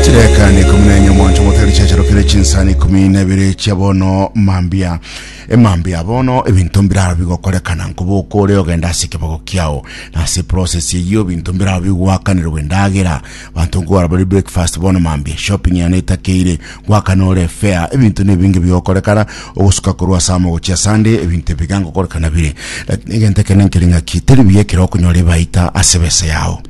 chirekani ikumi na enye omonto motari chiacharokire chinsani ikumi na ibere chia bono mambia emambia bono ebinto mbiraba bigokorekana nkoboka ore ogenda ase ekebago kiao na ase process eyio ebinto mbiraba bigwakanirwe endagera banto nkogora bari breakfast bono mambia shopping yane etakeire gwakana ore fair ebinto ne binge bigokorekana ogosuka korwa ase amo gochia sunday ebinto ebiga ngokorekana bire lakini egento ekene nkereng'aki teri buya ekero okonyora ebaita ase besa yao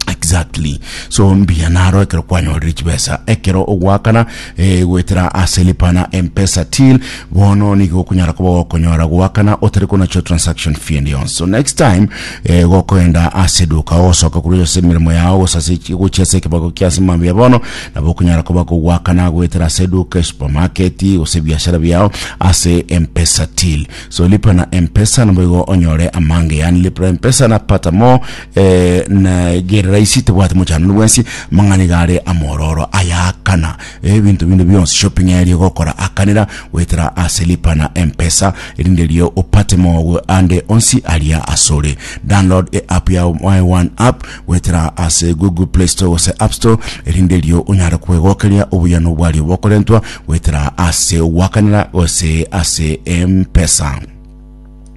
Exactly. So mbiya naro ekero kwanyorire chibesa ekero ogwakana eh, gwetera ase lipa na mpesa till bono nigo okonyara koba gokonyora gwakana otari konacho transaction fee and yon so next time eh, gokoenda ase duka osoka kuri ase emirimo yao gosase gochia ase ekebago kia ase mambia bono nabo okonyara koba kogwakana gwetera ase duka supermarket gose biashara biao ase mpesa till so lipa na mpesa nabo igo onyore amange yani lipa na mpesa na pata more Eh, na gerera isi tebwate mochanano bwensi mang'ana iga are amororo ayakana ebinto binde bionsi shopping erio gokora akanera goetera ase lipa na mpesa erinde rio opate mogo ande onsi aria asore download e app ya my one app goetera ase google play store gose app store erinde rio onyare kwegokeria obuyano bwario bokorentwa goetera ase gwakanera gose ase mpesa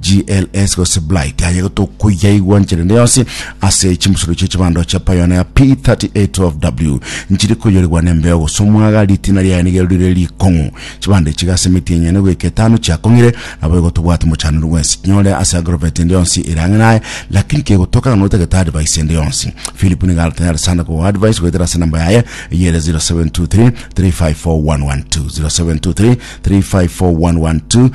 GLS gose Blight aye gotokoyaigwa nchire ende yonsi ase chimusuru chie chibando chia Pioneer P3812W nchiri koyorigwa nembeo gose omwaga ritina riaye nigeru rire rikong'u chibando echi gase emiti enyene goika etano chiakong'ire nabo egotobwati mochanero bwensi kinyore ase agrovet ende yonsi ere ang'e naye lakini kegotoka ng'a notagete advice ende yonsi Philip niga aratanyare sana kogoa advice goetera ase namba yaye eyere 0723 354112 0723 354112